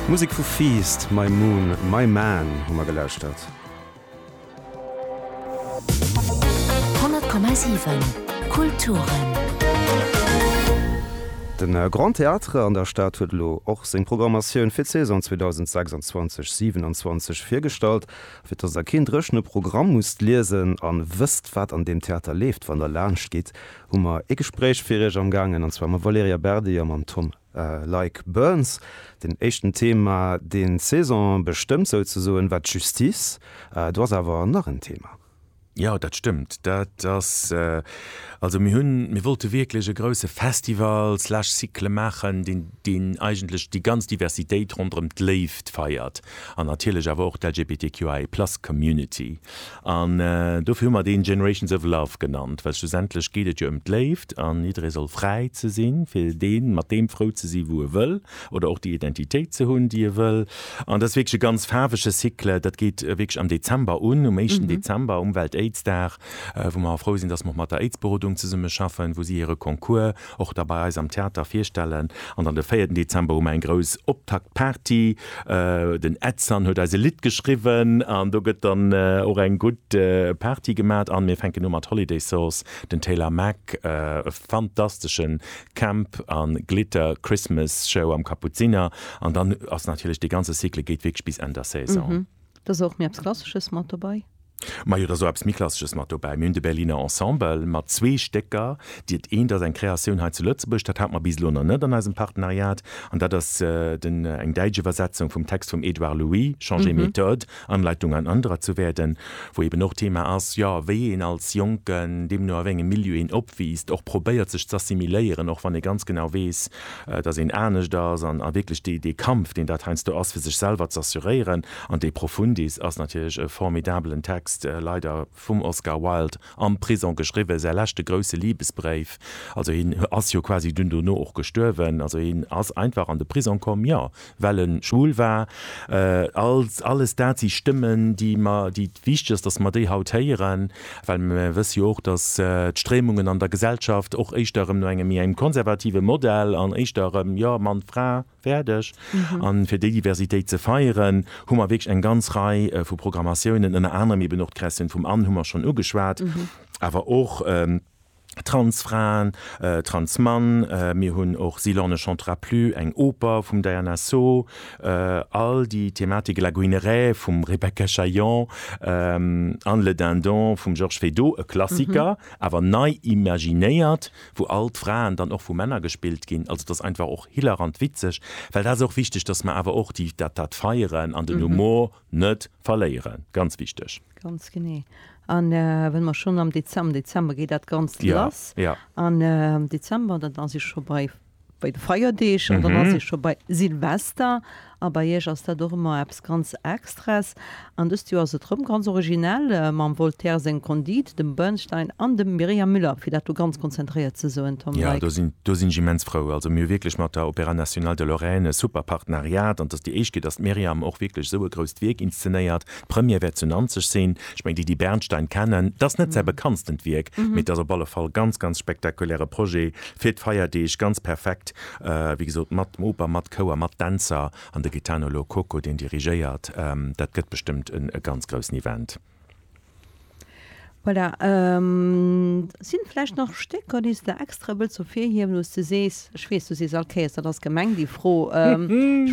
Musek vu Feast, My Moon, My Man hu mer gelauschtert. 100,7 Kulturen. De Grand Théâtre an der Stad huet elo och seng Programmatioun fir d'Saison 2026, 27 virgestallt. Fir dass der keen dréchene Programm musst liesen an wësst wat an deem Theater leeft wann der laanscht gitt, hu mer ee Gespréich fir Iech amgaangen, an zwar mam Valerija Berdi a mam Tom Leick Burns. Den éischten Thema, deen d'Saison bestëmmt souzesoen, war d'Justice. Do ass awer nach en Thema. Jo, dat stëmmt. Dat ass, also mir hunn, mir wollte wierklech e grouse Festival slash Cycle maachen, deen, deen eigentlech déi ganz Diversitéit ronderëm d'Léift feiert an natierlech awer och d'LGBTQIA+ Community. An dofir hu mer deen Generations of Love genannt, well schlussendlech geet et jo ëm d'Léift an jidderee soll fräi ze sinn, fir dee mat deem frou ze sinn, wou e wëll, oder och déi Identitéit ze hunn, déi e wëll. An dat ass wierklech e ganz faarwege Cycle. Dat geet wierklech am Dezember un, um éischten Dezember, um Welt-Aids-Dag, wou mer och frou sinn, dass mer och mat der Aids-Berodung zesummeschaffen, wou si hire Concours och da bei eis am Theater virstellen an dann de véierten Dezember hu mer eng grouss Optaktparty, den Edson huet eis e Lidd geschriwwen an do gëtt dann och eng gutt Party gemat an mir fänken u mat Holiday Sauce, den Taylor Mac, e fantastesche Camp a Glitter Christmas Show am Kapuziner an dann ass natierlech dee ganze Cycle geet wierklech bis Enn der Saison. Da si och méi eppes Klassesches mat dobei. Mä jo, et ass och eppes méi Klassesches mat dobäi. Mir hunn de Berliner Ensemble mat zwee Stécker, déi, dat eent ass eng Kreatioun hei zu Lëtzebuerg, dat hat mer bis elo nach net an eisem Partenariat, an dat ass den, eng däitsch Iwwersetzung vum Text vum Edouard Louis, Changer Methode, Anleitung ein anderer zu werden, wou eben och d'Thema ass, jo, wéi een als Jonken, deemno a wéi engem Milieu een opwiisst, och probéiert sech z'assimiléieren, och wann ee ganz genau weess, dass een anescht ass an a wierklech dee, dee Kampf, deen dat heiansdo ass, fir sech selwer z'assuréieren. An De Profundis ass natierlech e formidabelen Text, leider vum Oscar Wilde am Prison geschriwwen, säi leschte grouse Libesbréif. Also hien ass jo quasi dunn dono och gestuerwen. Also hien ass einfach an de Prison komm, jo, well e schwul war, all alles dat si Stëmmen, déi mer, déi wichteg ass, datt mer déi haut héieren, well mer wësse jo och, datt d'Stréimungen an der Gesellschaft och éischter erëm no engem méi engem konservative Modell an éischter erëm, jo, Mann, Fra, fäerdeg. An fir déi Diversitéit ze feieren, hu mer wierklech eng ganz Rei vu Programmatiounen, ënner anerem eben och d'Kreatioun vum An hu mer schonn ugeschwat, awer och, Transfraen, Transmann, mir hunn och Sylan ne chantera plus, eng Oper vum Diana So, all déi Thematike, La Guinerée vum Rebecca Chaillon, Anne le dindon vum Georges Feydeau, e Klassiker, awer nei imaginéiert, wou all d'Fraen dann och vu Männer gespillt ginn. Also et ass einfach och hilarant witzeg, well dat ass och wichteg, datt mer awer och déi dat dat feieren an den Humor. Net verléieren, ganz wichteg! Ganz genee. An well mer schonn am Dezem-, am Dezember geet dat Ganzt Ja, lass. ja. An am Dezember, dann ass ee scho bei, bei de Feierdeeg. An dann ass ee scho bei Silvester. A bei Iech ass dat och ëmmer eppes ganz Extraes. An dëst Joer ass et erëm ganz originell, mam Voltaire seng Conduite, dem Bernstein an dem Myriam Müller, fir dat do ganz konzentréiert ze soen, Tom Ja, Leick. do sinn, do sinn ech immens frou. Also mir hu wierklech mat der Opéra Nationale de Lorraine e super Partneriat. An Déi éischt geet, datt d'Myriam och wierklech esou e grousst Wierk inszenéiert. D'Première wäert zu Nanzeg sinn. Ech mengen, déi, déi Bernstein kennen, et ass net säi bekanntstent Wierk, mee et ass op alle Fall ganz, ganz spektakuläre Projet fir d'Feierdeeg. Ganz perfekt, wéi gesot, mat Oper, mat Chouer, mat Dänzer an de Gaetano Lo Cocco, deen dirigéiert. Dat gëtt bestëmmt e ganz groussen Event. Voilà, et sinn vläicht nach Stécker, déi s de extra wëlls ervirhiewen, wou s de sees, ech weess, du sees all Kéiers, dat ass gemeng, déi Fro, ech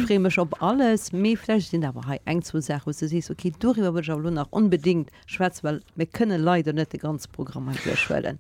freeë mech op alles, mee vläicht sinn der awer hei eng, zwou Saachen, wou s de sees, okay, doriwwer wëll ech awer elo nach onbedéngt schwätzen, well mir kënne leider net de ganze Programm hei duerchhuelen.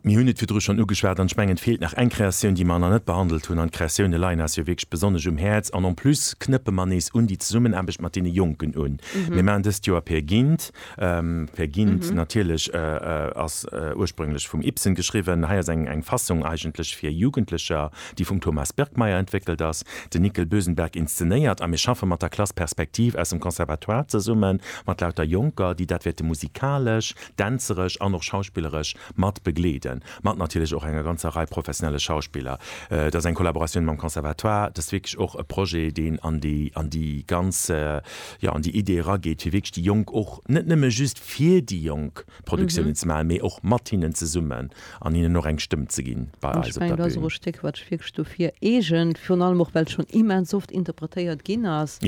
Mir hunn et virdru schonn ugeschwat an ech mengen, et feelt nach eng Kreatioun, déi mer nach net behandelt hunn, an d'Kreatioune leien eis jo wierklech besonnesch um Häerz an en plus knëppe mer nees un déi Zesummenaarbecht mat deene Jonken un. Mir maachen dëst Joer Peer Gynt. Peer Gynt natierlech ass ursprünglech vum Ibsen geschriwwen. Hei ass eng Fassung eigentlech fir Jugendlecher, déi vum Thomas Birkmeyer entwéckelt ass, den Nickel Bösenberg inszenéiert a mir schaffe mat der Klass Perspektiv aus dem Conservatoire zesummen, mat lauter Jonker, déi dat wäerte musikalesch, dänzeresch an och schauspilleresch mat begleeden, mat natierlech och enger ganzer Rei professionelle Schauspiller. Et ass eng Kollaboratioun mam Conservatoire, et ass wierklech och e Projet, deen an déi, an déi ganz, jo, an déi Idee erageet, fir wierklech déi Jonk och, net nëmme just fir déi Jonk Produktiounen ze maachen, mee och mat hinnen zesummen an hinnen och eng Stëmm ze ginn bei eis op der Bün. An ech mengen, dat ass och e Stéck, wat sech wierklech dofir eegent, virun allem och, well et schonn immens oft interpretéiert ginn ass,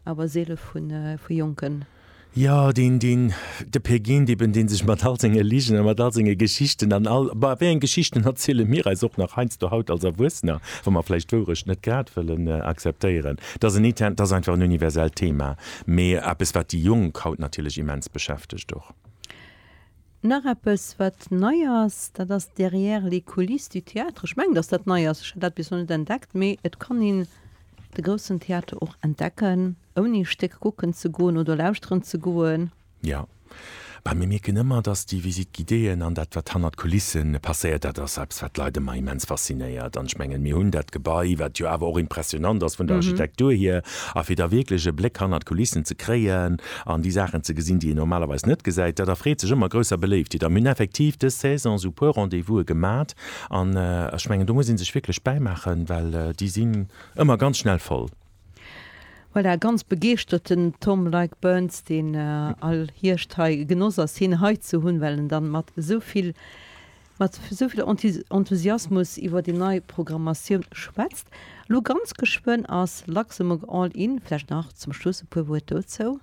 awer seele vu jonke Jo, deen, deen, de Pegeen, dee ben, dee sech mat all senge Ligen a mat all senge Geschichten an all, bah, wéi eng Geschichten erziele mir eis och nach heiansdo haut als Erwuessener, wa mer vläicht d'Wourecht net grad wëllen akzeptéieren? Dat ass en Ite, dat ass einfach en universellt Thema, mee eppes, wat déi Jonk haut natierlech immens beschäftegt och. Nach eppes, wat nei ass, dat ass Derrière les coulisses du théâtre. Ech mengen, dass dat nei ass, ech hat dat bis elo net entdeckt, mee et kann een de groussen Theater och entdecken, ouni ee Stéck kucken ze goen oder lauschteren ze goen. Jo, mä mir mierken ëmmer, dass déi Visites guidéeën an dat, wat hannert d'Kulisse passéiert, dat ass eppes, wat d'Leit ëmmer immens faszinéiert. An ech mengen, mir hunn dat Gebai, wat jo awer och impressionnant ass vun der Architektur hier, a fir da wierklech e Bléck hannert d'Kulissen ze kréien, an déi Saachen ze gesinn, déi een normalerweis net gesäit, dat erfreet sech ëmmer grousser Beléiftheet. A mir hunn effektiv dës Saison esou e puer Rendez-vouse gemat an ech mengen, do muss ee sech wierklech bäimaachen, well déi sinn ëmmer ganz schnell voll. Voilà, ganz begeeschterten Tom Like Burns, deen all Hierscht hei genoss ass, hien hei ze hunn, well en dann mat esou vill mat esou vill Enthusiasmus iwwer déi nei Programmatioun schwätzt. Elo ganz geschwënn ass Luxembourg All In. Vläicht nach zum Schluss e puer Wuert dozou.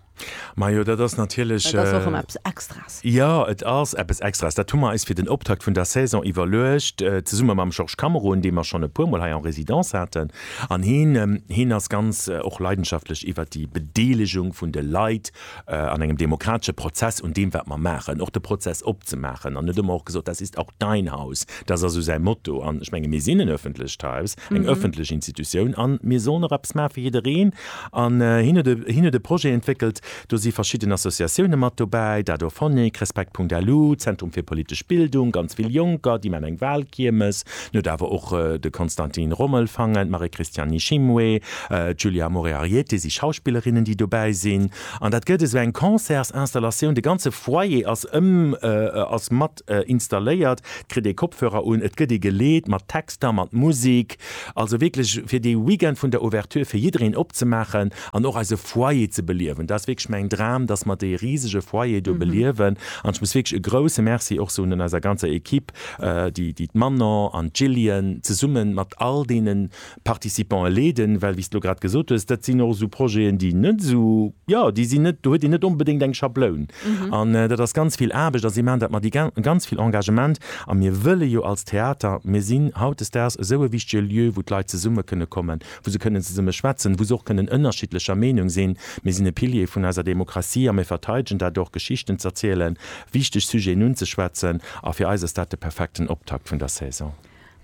Majo, dat ass natierlech. Dat ass och ëmmer eppes Extraes. Jo, et ass eppes Extraes. Dat hu mer eis fir den Optakt vun der Saison iwwerluecht, zesumme mam Georges Cameron, dee mer schonn e puermol hei en résidence haten. An hien, hien ass ganz och leidenschaftlech iwwer déi Bedeelegung vun de Leit an engem demokratesche Prozess un deem, wat mer maachen, och de Prozess opzemaachen. An et hu mer och gesot, Das ist auch dein Haus. Dass ass esou säi Motto. An ech menge mir sinn en öffentlecht Haus, eng öffentlech Institutioun an mir sollen och eppes maache fir jiddereen. An hien huet e, hien huet e Projet entwéckelt, do si verschidden Associatioune mat dobäi, Dadorphonic, Respekt Punkt Alu, Zentrum fir politesch Bildung, ganz vill Jonker, déi maachen eng Wahlkiermes. Mir huet awer och de Konstantin Rommel fangen, d'Marie-Christiane Nishimwe, d'Julia Moriarieté si Schauspillerinnen, déi dobäi sinn. An dat gëtt esou eng Concertsinstallatioun, de ganze Foyer ass ëm, ass mat installéiert, et kritt ee Kopfhörer un, et gëtt ee geleet mat Texter, mat Musek. Also wierklech fir dee Weekend vun der Ouverture fir jiddereen opzemaachen an och eise Foyer ze beliewen. Dat ass wierklech mäin Dram, dass mer dee risege Foyer do beliewen. An ech muss wierklech e grouse Merci och soen un eiser ganzer Ekipp, déi d'Manon an d'Jillian zesumme mat all deene Participantë leeden, well wéi s d'lo grad gesot hues, dat sinn och esou Projeten, déi net esou, jo, déi sinn net, do huet een net onbedéngt eng Schabloun an dat ass ganz vill Aarbecht a si maachen dat mat ganz vill Engagement. A mir wëlle jo als Theater, mir sinn hautdesdaags esou e wichtege Lieu, wou d'Leit zesumme kënne kommen, wou se kënnen zesummen schwätzen, wou se och kënnen ënnerschiddlecher Meenung sinn. Mir sinn e Pilier vun eiser Demokratie a mir verteidegen dat och, Geschichten z'erzielen, wichteg Sujeten unzeschwätzen. A fir eis ass dat de perfekten Optakt vun der Saison.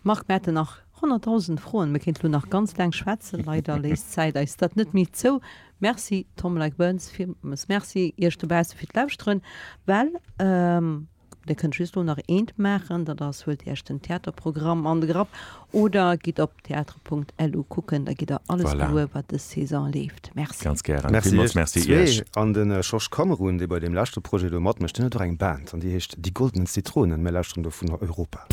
Marc, mir hätten nach 100.000 Froen, mir kéinten elo nach ganz laang schwätzen, leider léisst d'Zäit eis dat net méi zou. Merci Tom Leick-Burns, villmools Merci iech dobausse fir d'Lauschteren, well Dir kënnt just elo nach eent maachen, dat ass, huelt Iech den Theaterprogramm an de Grapp oder gitt op theatre.lu kucken, da gitt Der alles gewuer, wat dës Saison leeft. Merci. Ganz gären. Merci Iech zwee. An de Jorge Cameron, dee bei deem leschte Projet do matmécht, deen huet och eng Band an déi heescht Die Goldenen Zitronen. Mir lauschteren dovun Europa.